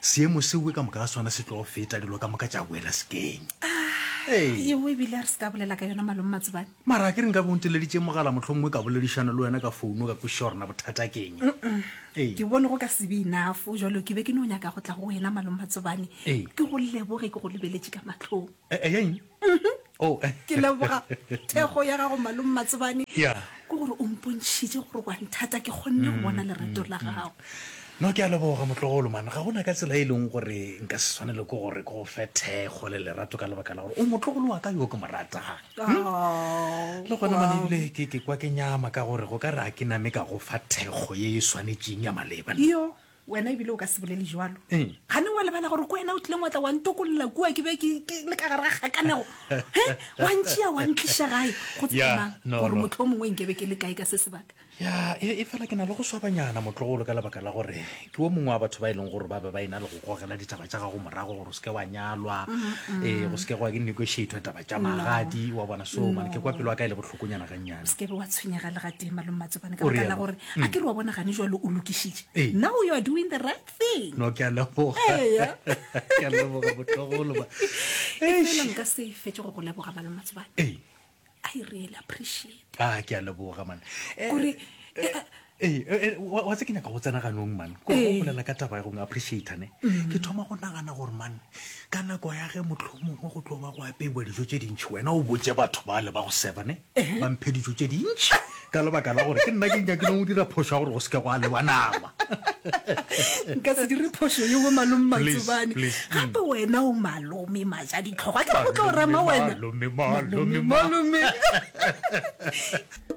seemo sewe ka moka ga sona se tlo feta dilo ka moka tša boela sekeng eo ah, ebile a re se ka bolela ka yona malome matsobane mara ke re nka bonteleditše mogala motlho mongwe ka boledišana le wena ka founo ka kwešiša gorena bothata keng ke bone go ka sebe enafo jalo ke be ke ne o nyaka go tla go wena malome matsobane ke go leboge ke go lebeletše ka matlhong Eh, eh, eng? Mhm. Oh, eh. Ke leboga thekgo ya gago Malome Matsebane. Yeah. Ke gore o mpontšhitše gore wa nthata ke kgonne go bona lerato la gago. No ke a leboga motlogolo man ga gona ka tsela e leng gore nka se tshwanele ke gore ke go fe thekgo le lerato ka lebaka la gore o motlogolo wa ka yo ke mo ratang Oh, le gona wow. mane ebile ke ke kwa ke nyama ka gore go ka re a ke name ka go fa thekgo ye e swanetšeng ya maleba nna. Yo, Wena ebile o ka se bolele jwalo. Eng? Gane wa lebala gore ko wena o tlileng wa tla wa ntokolola kua ke be ke ke le ka gare ga kgakanego. He, wa ntšea wa ntliša gae go Ya, tsemang no, gore no. motlho o mongwe nke be ke le kae ka se sebaka. ya e e fela ke na le go swabanyana motlogolo ka lebaka la gore ke wo mongwe wa batho ba e leng gore ba be ba e na le go gogela ditaba tša gago morago gore o seke wa nyalwa ee go seke goa ke negotiatwa taba tša magadi wa bona so mane ke kwa pelo ya ka e le bohloko phokonyana gannyane se kebe wa tshwenyega le gatee malome matsobane ka O baka la realo. gore a ke re wa bona gane jalo o lokišitše Ee. now you are doing the right thing no ke a leboga Eya. ke a leboga botlogolo ba e fela nka se fetse go go leboga malome matsobane ee i really appreciate a ke a leboga man Eh, gore eh, eh, Ee, e, e, wa wa tse ke nyaka go tsena ganong man ko go Ee. bolela ka taba ya go appreciata ne ke thoma go nagana gore man ka nako ya ge mohlomongwe go tlo ba go apeiwa dijo tše dintšhi wena o botse batho ba le ba go seba ne ba mphe dijo tše dintšhi ka lebaka la gore ke nna ke nyakileng go dira phošo ya gore go se ke go a lewa nama nka se dire phošo yo bo malome Please, matsobane please, mm. gape wena o malome maja ditlhogo a ke go tlo rema wena Malome, malome, malome. malome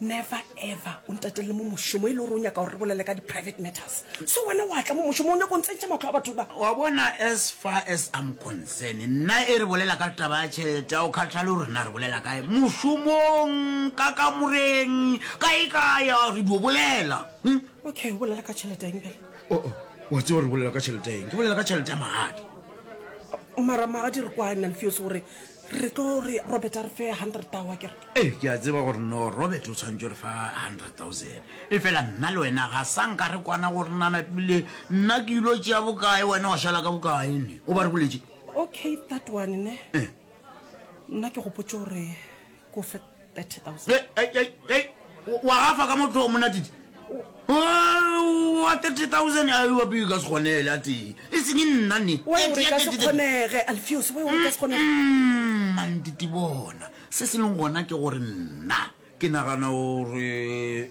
never ever o ntatele mo mošomo e le gore o nyaka gore re bolele ka di-private matters so wena wa tla mo mošomo o nyako ntsentšha matlho a batho ba wa bona as far as am concern nna e re bolela ka taba ya tšhelete o kgatlhale o rena re bolela kae mošomong ka kamoreng ka e kaya re dio bolela hmm? okay o bolela ka tšhelete eng bele oh, oh, wa tseo re bolela ka tšhelete eng ke bolela ka tšhelete ya magadi mara magadi re kwane alfeos gore re tlo re robert a re fe hundred tao a kere ee ke a tseba gore no robert o tshwanetse re fa hundred thousand e fela nna le wena ga sa nka re kwana gore nana pele nna ke ilo tšea bokae wena wa šala ka bokae ne o ba re boletse okay that one ne eh. nna ke gopotse gore ko fe wa gafa ka motho o monatite wa 30000 a iwa peo ka se kgonele a tee e seng nna ne mantite bona se se leng gona ke gore nna ke nagana gore